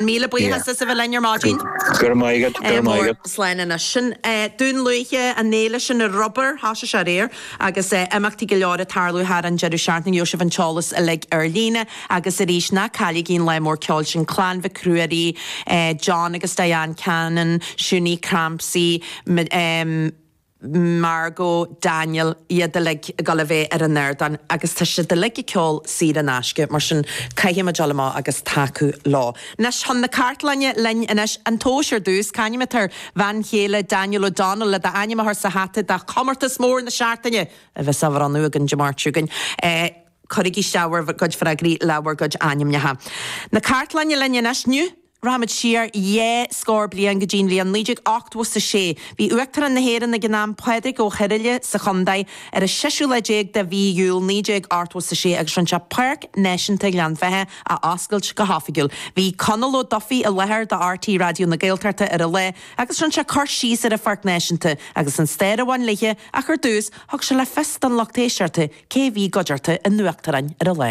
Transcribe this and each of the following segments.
Míle buíochas as a bheith linn ar maidin. Go raibh maith agat, go raibh maith agat. Slán anois. Sin Dún Lúiche, an fhéile sin ar rubar, thoisigh sé aréir, agus imeachtaí go leor ag tarlú thar an deireadh seachtaine. Gheobhaidh sibh an t-eolas uilig ar líne. Agus arís, ná cailligí an lá mór ceoil sin, Clann Mhic Ruairí, John agus Diane Cannon, Shunie Crampsey, Margo, Daniel, iad uilig ag dul a bheith ar an ardán agus tá siad uilig ag ceol saor in aisce, mar sin caithfimid dul amach agus tacú leo. Anois chun na cartlainne linn anois, an tomhas ar dtús. C'ainm atá ar bhean chéile Daniel O'Donnell le d'ainm a chur sa hata do Chomórtas Mór na Seachtaine a bheas á bhronnadh againn Dé Máirt seo chugainn. Cuirigí isteach bhur gcuid freagraí le bhur gcuid ainmneacha. Na cartlainne linn anois. Rachaimid siar dhá scór bliain go dtí'n bhliain 1986. Bhí Uachtarán na hÉireann ag an am, Pádraig Ó hIrighile, sa Chontae ar an seisiú lá déag de mhí Iúil 1986 agus rinne sé Páirc Náisiúnta Ghleann Bheithe a oscailt go hoifigiúil. Bhí Conall Ó Dubhthaigh i láthair do RTÉ Raidió na Gaeltachta ar an lá agus rinne sé cur síos ar an Pháirc Náisiúnta agus an stair a bhain léithe ach ar dtús thug sé le fios don lucht éisteachta cé bhí i gcuideachta an Uachtaráin ar an lá.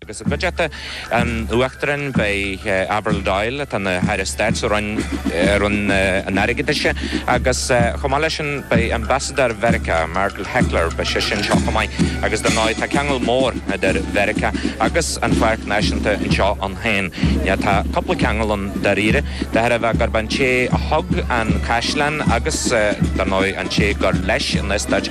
agus i gcuideachta an Uachtaráin beidh Avril Doyle, atá ina hAire Stáit sa Roinn an Airgeadais, agus chomh maith leis sin beidh Ambasadóir Mheiriceá, Margaret Heckler, beidh sise anseo chomh maith agus dar ndóigh tá ceangal mór idir Mheiriceá agus an pháirc náisiúnta anseo ann féin. Tá cúpla ceangal ann dáiríre, de thairbhe gurb é an té a thug an caisleán agus dar ndóigh an té gur leis an eastát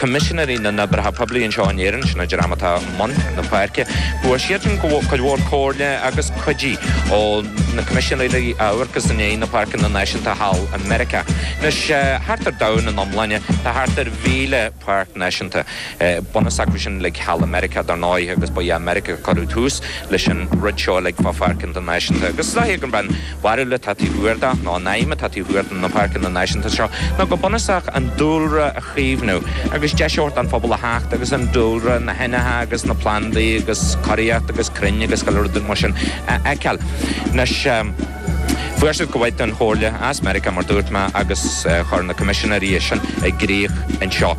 Coimisinéirí na nOibreacha Poiblí anseo in Éirinn, sin an dream atá i mbun na páirce. Fuair siadsan cuid mhór comhairle agus cuidiú ó na coimisinéirí a amharcas i ndiaidh na páirceanna náisiúnta thall i Meiriceá. Anois, thart ar domhan ina iomláine, tá thart ar mhíle páirc náisiúnta. Bunús acu sin uilig thall i Meiriceá, dar ndóigh, agus ba é Meiriceá a chuir tús leis an rud seo uilig fá pháirceanna náisiúnta. Agus is dóigh ag an bhfear bharúil atá taobh thiar de, nó an aidhm atá taobh thiar de na páirceanna náisiúnta seo, ná go bunúsach an dúlra a chaomhnú agus deis a thabhairt don phobal a theacht agus an dúlra, na hainmhithe agus na plandaí agus curaíocht agus crainn agus chuile rud mar sin a fheiceáil. Anois, fuair siad cuid mhaith den chomhairle as Meiriceá, mar dúirt mé, agus chuir na Coimisinéirí é sin i gcrích anseo.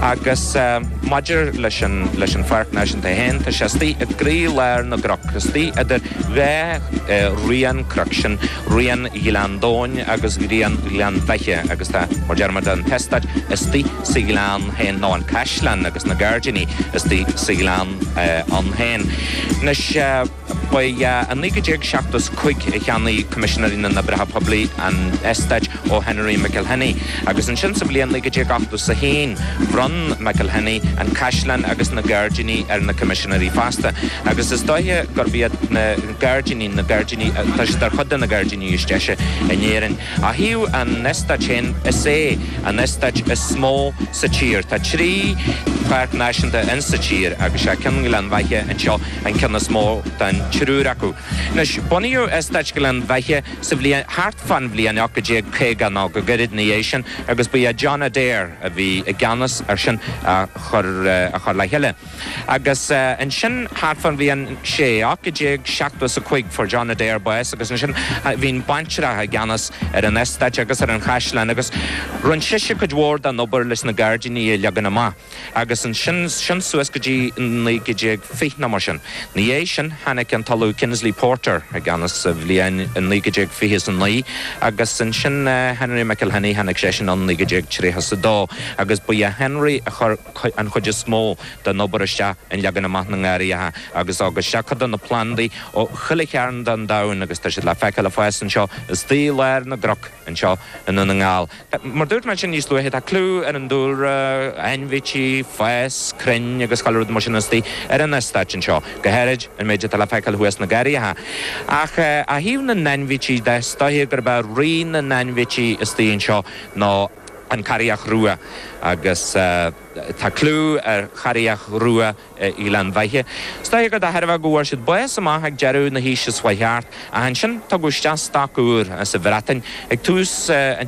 Agus maidir leis an Pháirc Náisiúnta féin, tá sé istigh i gcroílár na gcnoc, istigh idir. dá raon cnoc sin, raon Ghleann Domhain agus raon Ghleann Bheithe, agus tá, mar déarfaimid, an t-eastát istigh sa ghleann féin, nó an caisleán agus na gairdíní istigh sa ghleann ann féin. Anois, ba i 1975 a cheannaigh Coimisinéirí na nOibreacha Poiblí an t-eastát, ó Henry McIlhenny, agus ansin sa bhliain 1981 bhronn McIlhenny an caisleán agus na gairdíní ar na coimisinéirí fosta, agus is dóiche gurb iad na gairdíní na gairdíní, tá siad ar chuid de na gairdíní is deise in Éirinn. Ó thaobh an eastáit féin, is é an eastáit is mó sa tír. Tá trí pháirc náisiúnta in sa tír, agus is é ceann Ghleann Bheithe anseo an ceann is mó den triúr acu. Anois, bunaíodh eastáit Ghleann Bheithe. sa bhliain thart fán bhliain 1850 nó go gairid ina dhiaidh sin agus ba é John Adair a bhí i gceannas air sin a chur, a chur le chéile. Agus ansin thart fán bhliain, sé, 1875 fuair John Adair bás agus ansin bhí an baintreach i gceannas ar an eastáit agus ar an chaisleán agus rinne sise cuid mhór den obair leis na gairdíní a leagan amach. agus ansin suas go dtí an 1920 nó mar sin. Ina dhiaidh sin, tháinig an tOllamh Kingsley Porter i gceannas sa bhliain 1929, agus ansin Henry McIlhenny, tháinig seisean in 1932, agus ba é Henry a chuir an chuid is mó den obair isteach in leagan amach na ngarraitheacha agus a thug isteach cuid de na plandaí ó chuile chearn den domhan, agus tá siad le feiceáil fós anseo astoigh i lár na gcnoc anseo i nDún na nGall. Mar dúirt mé ansin níos luaithe, tá clú ar an dúlra, ainmhithe, fás, crainn agus chuile rud mar sin astoigh ar an eastáit anseo, go háirid an méid atá le feiceáil thuas sna garraithe. Ach ó thaobh na n-ainmhithe de, is dóiche gurb é rí na n-ainmhithe astoigh anseo ná an carria rua agus tá clú ar charria rua Ghleann Bheithe. Is dóiche gur de thairbhe go bhfuair siad bás amach ag deireadh na haoise seo thart ach ansin tugadh isteach stoc úr as an Bhreatain ag tús an